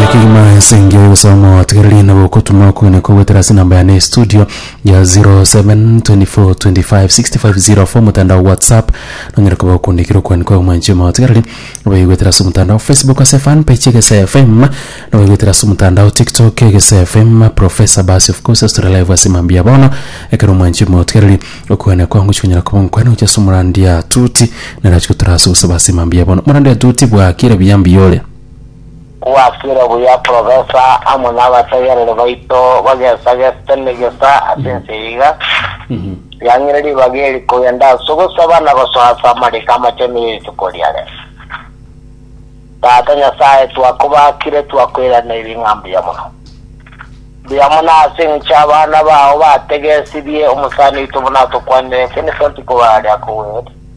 Ye kegima ense engiya yogosaba motigererie na gokotuna okoina kogwetera ase enamba yane ya estudio ya 0724256504 omotandao o WhatsApp nonyare koba okondikera okoina kwao mwanchie motigererie nobaigwetera ase omotandao Facebook ase fan page Egesae FM nobaigwetera ase omotandao TikTok Egesae FM Professor Basi of course ase tore live ase mambia bono ekero mwanchie motigererie okoina kwao ngochi konyara koba ngokoina gochia ase omorandia tuti nere achi gotora ase ogosaba ase mambia bono omorandia tuti bwakire buya mbiyore. Kwasire buya Profesa amo nabategereri baito bagesa geste negesa ase ense eye iga. Yang'ire ribaga eri kogenda ase ogosaba na gosoa ase amariko amachenu ya rituko riare. Tata Nyasae twakobakire twakoiraneiri ng'a mbuya mono. Mbuya mono ase eng'encho abana bao bategesibie omosani oito buna atokwanire Vincent koba aria kogwere.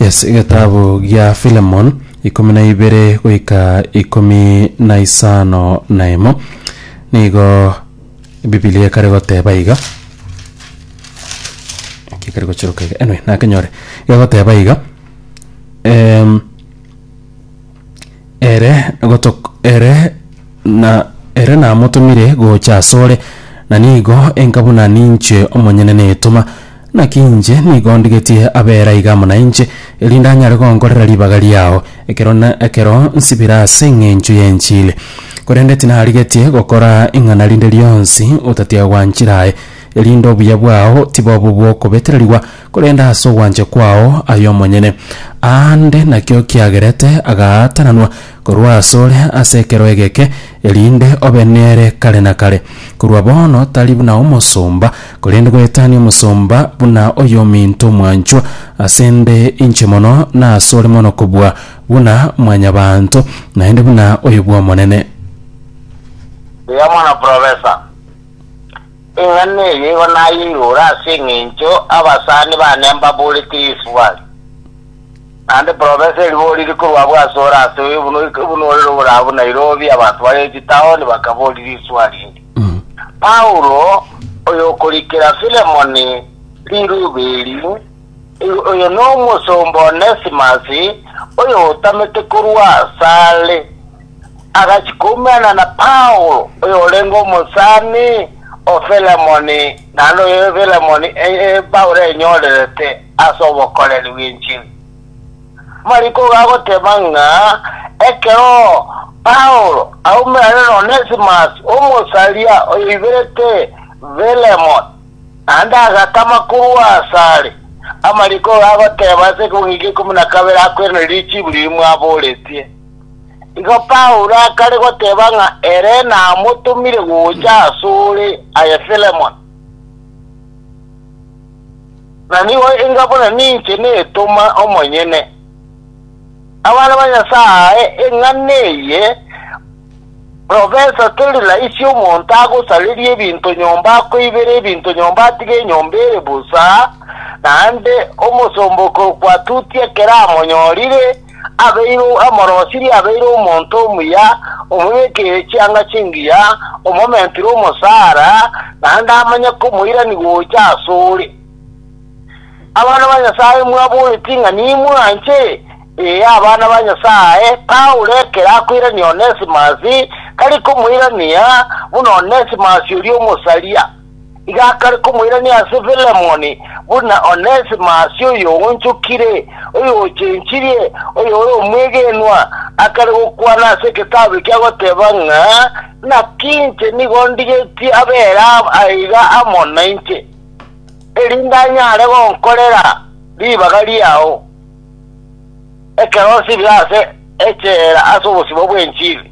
Yes, egetabu gia Philemon ikomi na ibere goika ikomi na isano na emo nigo Biblia ekare goteba iga Eki ekare gochiroka iga anyway nakenyore egoteba iga em, Ere gotok- ere na ere namotomire gocha asore, na nigo enka buna ninche omonyene netoma. Naki inche nigo ndigetie abera iga amo nainche, erinde anyare gonkorera ribaga riao, ekero na ekero nsibire ase engencho y'enchili. Korende tinarigetie gokora ing'ana rinde rionsi otatiga gwanchira aye, erinde obuya bwao tibobo bw'okobetererigwa, Korende ase ogwancha kwao aye omonyene, aande nakio kiagerete agaatananwa korwa asore ase ekero egeke, erinde obe nere kare na kare. Korwa bono tari buna omosomba, korende goetania omosomba buna oyominto omwanchwa ase 'nde inche mono na asore mono kobua buna mwanyabaanto, naende buna oyo bw'Omonene. Mbuya mono professor. Eng'ana eye igo nayeirore ase engencho abasani bane mbaborete Yesu bware. Naende profesa eriboriri korwa abwo asore ase oyo buna buna orere ogore abwo Nairobi, abanto bare chitaoni bakabori riswari eri. Paulo, oyokorikera Filemoni riruba eri, Oyo nomosomba Onesimus, oyotamete korwa asare, agachia koumerana na Paulo, oyorenge omosani o Filemoni, naende oyo Filemoni Paulo enyorerete ase obokoreri bw'enchili. Mariko igo agoteba ng'a ekero Paulo aumerane n'Onesimus, omosaria oyoiberete Filemoni, Naende agatama korwa asare amariko iga agoteba ase ekebungo ekiya ikomi na kabere akweranere richiibu riria mwaboretie. Igo Paulo akare goteba ng'a ere namotomire gocha asore aye Filemon, na nigo enga buna ninche netoma omonyene. Abana ba Nyasae, ing'ana eye, Professor Torila isia omonto agosareria ebinto nyomba akoibera ebinto nyomba atige enyomba ere bosa naende omosomba okokwatuti ekero amonyorire abeire amorosirie abeire omonto omuya omobekeire chianga chingiya omomentire omosara naende amanye komoirani gocha asore Abana ba Nyasae mwaboeti ng'a nimwanche? Ee, abana ba Nyasae. Paulo ekero akoirania Onesimasi, tari komoirania buna Onesimasi oria omosaria. Iga akare komoirania ase Filemoni, buna Onesimasi oyoonchokire, oyochenchirie, oyore omwegenwa. Akare gokwana ase egetabu ekia goteba ng'a, Naki inche nigo ndigetie abeera aiga amo nainche. erinde anyare gonkorera ribaga riao ekero osibire ase echela ase obosibwa bw'enchili.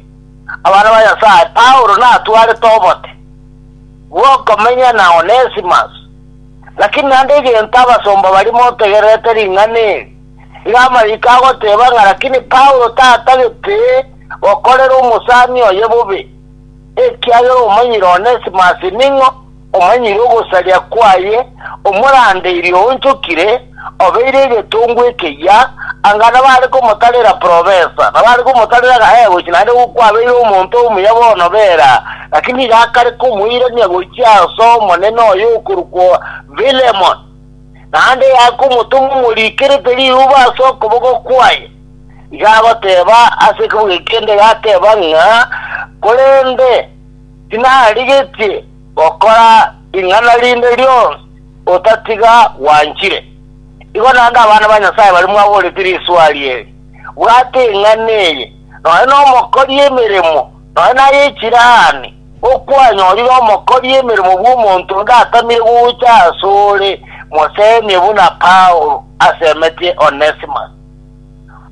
Abana ba Nyasae, Paulo natwarete obote bw'okomenya na Onesimus, lakini naende egento abasomba baria motegererete ring'ana eri, iga amariko agoteba ng'a lakini Paulo tatagete gokorera omosani oye bobe. ekiagera omanyire Onesimasi ning'o, omanyire ogosaria kwaye, omorandeiri oonchokire, obeire egetungu ekeyia, anga nabare komotarera profesa, nabare komotarera agae gochia naende kwabeire omonto omuya bono bera, lakini nigo akare komoirania gochia ase omonene oye okorokwa Philemon, naende yakomotoma omorikerete riuba ase okoboko kwaye. Iga agoteba ase ekebuga ekende, gateba ng'a, Korende tinarigetie gokora ring'ana rinde rionsi otatiga gwanchire. Igo naende abana ba Nyasae baria mwaboretie riswari eri, bwate eng'ana eye, nonye nomokori emeremo, nonye naye chirani, okwanyorire omokori emeremo bw'omonto onde atamire gocha asore, mosemie buna Paulo asemetie Onesimus.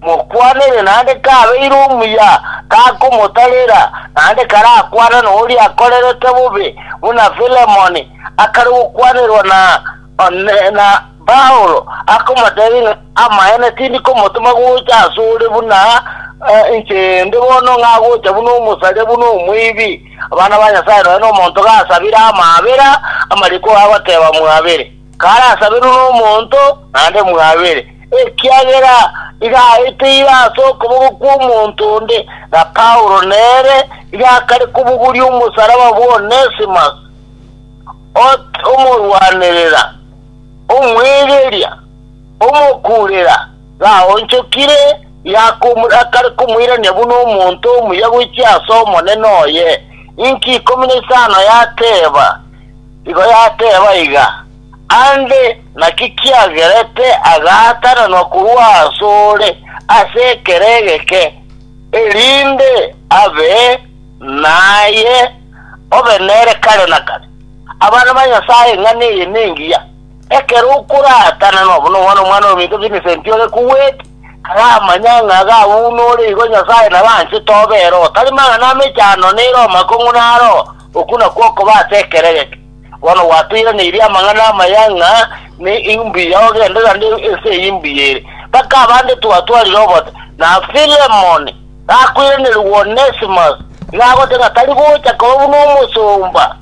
Mokwanere naende kabeire omuya takomotarera, naende karakwane noria akorerete bobe, buna Filemoni akare gokwanerwa na na Paulo, akomotebia ng'a, Amaene tindi komotoma gocha asore buna inche inde bono, ng'a gocha buna omosaria, buna omoibi. Abana ba Nyasae nonya nomonto gasabire amaabera, amariko agoteba mwabere. karasaberwe nomonto naende mwabere, ekiagera iga aete ira ase okoboko kw'omonto onde, na Paulo nere iga akare kobogoria omosaraba bw'Onesimus, ote omorwanerera, omwegeria, omokuurera, gaonchokire, iga akomor- akare komoirania buna omonto omuya goichia ase Omonene oye. Inki ikomi na isano yateeba? Igo yateeba iga, Aande, naki kiagerete agaatananwa korwa asore ase ekero egeke, erinde abe naye obe nere kare na kare? Abana ba Nyasae, eng'ana eye nengiya, ekero okoraatananwa buna omwana omwana ominto Vincent ore kugwete, aramanya ng'a iga buna ore igo Nyasae nabo anchete obe ere, otari mang'ana amechando nere omakong'u naro, Okwo nakwo okoba ase ekeregete. Bono gwatoiraneiri amang'ana amaya ng'a ne imbuya ogende rande ense eye imbuya ere, mpaka abande twatwarire obosa, na Filemoni gakoiranerigwa Onesimus, ng'a agote ng'a tari gocha koba buna omosomba,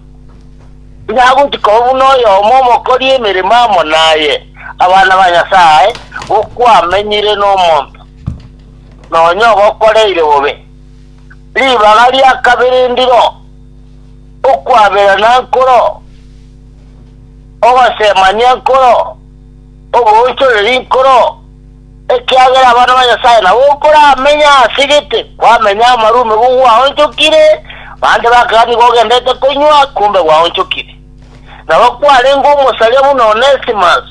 ng'a agochi koba buna oyomo omokori emeremo amo naye. Abana ba Nyasae, gokwamenyire nomonto nonya obokoreire bobe. ribaga ria kabere ndiro, okwaberana nkoro, ogosemania nkoro, oboonchoreri nkoro, ekiagera abana ba Nyasae nabo nkoramenye ase gete, kwamenya amarwa omegoko gwaonchokire, bande bakaga nigo ogendete konywa, kumbe gwaonchokire. Nabo kwarenge omosaria buna Onesimus,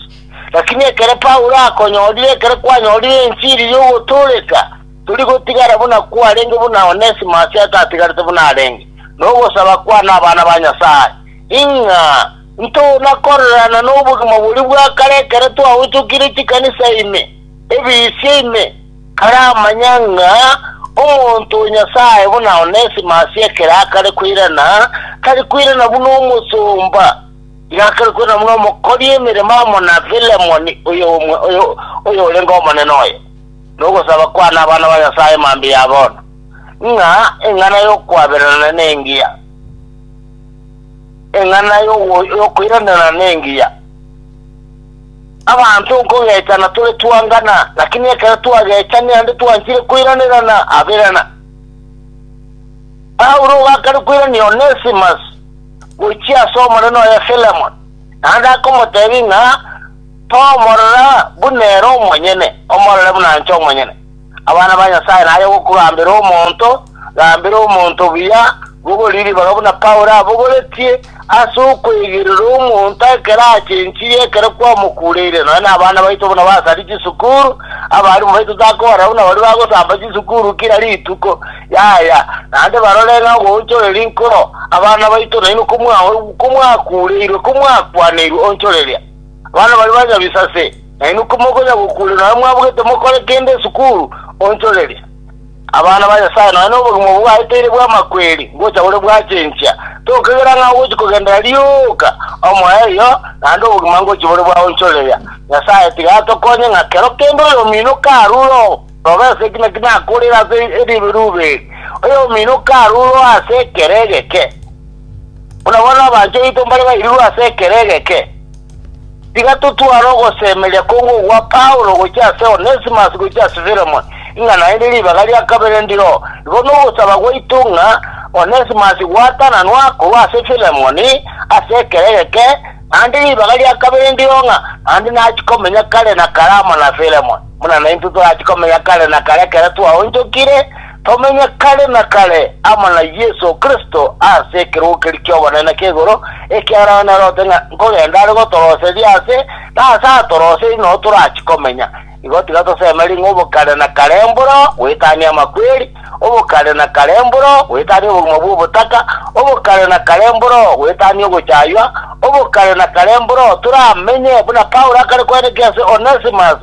lakini ekero Paulo akonyorire, ekero kwanyorire enchiri y'ogotooreka, Tori gotigara buna kwarenge buna Onesimo ase atatigarete buna arenge nogosaba kwane abana ba Nyasae, ing'a ntona korererana nobogima boria bwa kare ekero twagochokire chikanisa ime, ebisia ime. Kare amanya ng'a omonto o Nyasae buna Onesimo ase ekero akare koirana, tari koirana buna omosomba, igo akare koirana buna omokori emeremo amo na Filemoni, oyorenge omonene oye. nogosaba kwane abana ba Nyasae mambia ya bono, ng'a eng'ana y'okwaberana nengiya, eng'ana y'ogo- y'okoiranerana nengiya. Abanto nkogechana tore twangana, lakini ekero twagechani naende twanchire koiranerana aberana. Paulo ogakana koirania Onesimus gochia ase omonene oye Filemon, naende akomotebia ng'a Tomorora buna ere omonyene, omorore buna inche omonyene. Abana ba Nyasae, naye ogokugambera omonto, gambera omonto buya, bogori ribaga buna Paulo abogoretie, ase okweigerera omonto ekero achenchirie ekero kwamokureire. Nonya nabana baito buna basari chisukuru, abarimu baito takobarora buna baria bagosamba chisukuru kira rituko, yaya, naende barore ng'a ogoonchoreria nkoro abana baito nainwe komwa komwakureirwe, komwakwaneirwe onchoreria. Abana baria ba nyabisase, nainwe komokonya gokuuria nonya mwabugete mokore kende esukuru, onchoreria. Abana ba Nyasae, nonya nobogima obwo bwaeteire bw'amakweri ngocha bore bwachenchia, tokegera ng'a ogochi kogendera rioka omoerio naende obogima ngochi bore bwaonchoreria. Nyasae tiga atokonye ng'a kero kende oyomino karure orobe ase eki naki nakorire ase eribe ribe eri, oyomino karure oase ekero egeke. Buna bono abanto baito mbare bairigwe ase ekero egeke, tiga totware ogosemeria konge ogwa Paulo gochia ase Onesimus gochia ase Filemoni, ng'a naende ribaga ria kabere ndiroo. Igo nogosaba gwaito ng'a Onesimus gwatananwa korwa ase Filemoni ase ekero egeke, naende ribaga ria kabere ndiroo ng'a naende nachie komenya kare na kare amo na Filemoni, buna naintwe torachi komenya kare na kare ekero twaonchokire, Tomenye kare na kare amo na Yeso Kristo ase ekerogo keria ki'obonene ki'igoro, ekiagera onye nerote ng'a nkogenda are gotoroseria aase, na aase atoroseiri noo torachi komenya. Igo tiga tosemerie ng'a obo kare na kare mboro goetania amakweri, obo kare na kare mboro goetania obogima bw'obotaka, obo kare na kare mboro goetania ogochaywa, obo kare na kare mboro toramenye buna Paulo akare kwenekia ase Onesimus,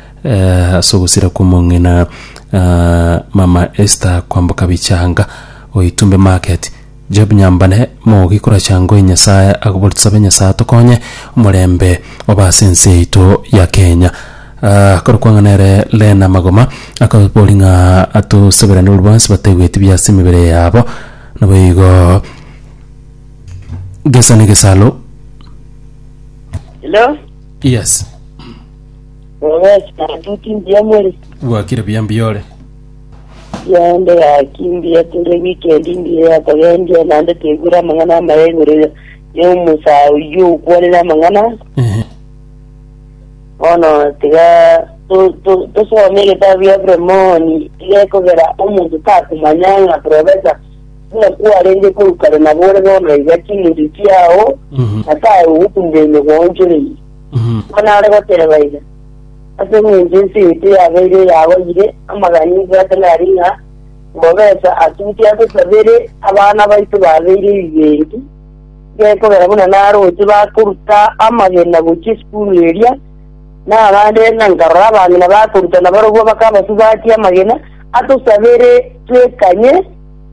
Ase ogosira kw'omong'ina mama Esther kwamboka bichanga o Itumbe Market, Job Nyambane, mogoki koracha ngoe Nyasae, akoboria, Tosabe Nyasae atokonye omorembe obe ase ense yaito ya Kenya. Akorokwana nere Lena Magoma, akaboria ng'a atosaberane boria bonsi bataigwe ekibi ase emebere yabo. Naboigo gesa negesalo. Hello? Yes. Mwawesi atuti mbuya mwere. Gwakire buya mbuya ore. Yonde yaki mbuya tore weekend mbuya yakogendia nande tegure amang'ana amaya igoro ya ya omusa oyio okwanire amang'ana Ehe. bono tiga to- to- tosome egetabu ya Filemoni igekogera omonto takomanya ng'a profesa buna kwarenge korwa kare nabore bono iga chimuti chiao Mhm. natae ogokumira emegonchorei Buna are gotereba ime, ase engencho ense yaito yabeire eyagoyire amagani ebwate nari ng'a mbobesa atuti ase sabere abana baito babeire ebibengi, gekogera buna naroche bakoruta amagena gochia esukuru eria, na abande na nkarora abang'ina bakoruta nabarobwo bakabasubatia amagena, atosabeire twekanye.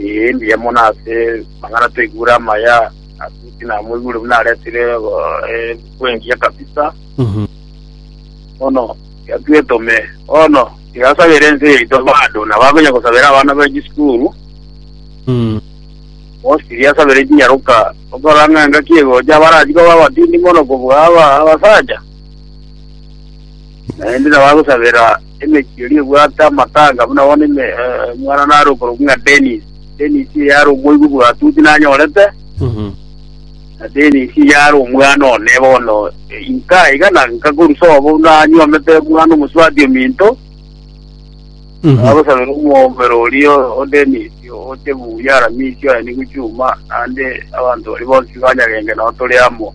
Ee, mbuya mono ase amang'ana toigure amaya ase inki namoigure buna aretire ebuku engiya kabisa bono tiga twetome bono tiga asabere ense yaito bado nabo akonya gosabera abana ba chisukuru bosi tiga asabere chinyaroka okora ng'a engaki egocha abarachi koba abatindi mono kobua aba abasacha naende nabo agosabera Emechie eria ebwate amatanga buna bono ime, eh, omwana nare okorokwa ng'a Dennis. Dennis iye yare omoigwa bwatuti nanyorete, na Dennis iye yare omwana one bono eh, inka iga na nkakorusa obo nanyuomete omwana omosubati ominto, agosabera omwombero oria o Dennis oche buya aramisi oye nigo chuma, naende abanto baria bonsi banyagenge nao tore amo.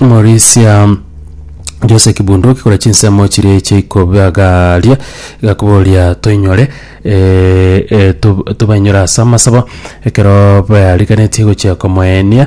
Morisia Jose Kibunduki kore chinsemo chiria eche ikobagaria igakoboria toinyore eh, eh, tob- tobainyore ase amasabo ekero bariganetie gochia komoenia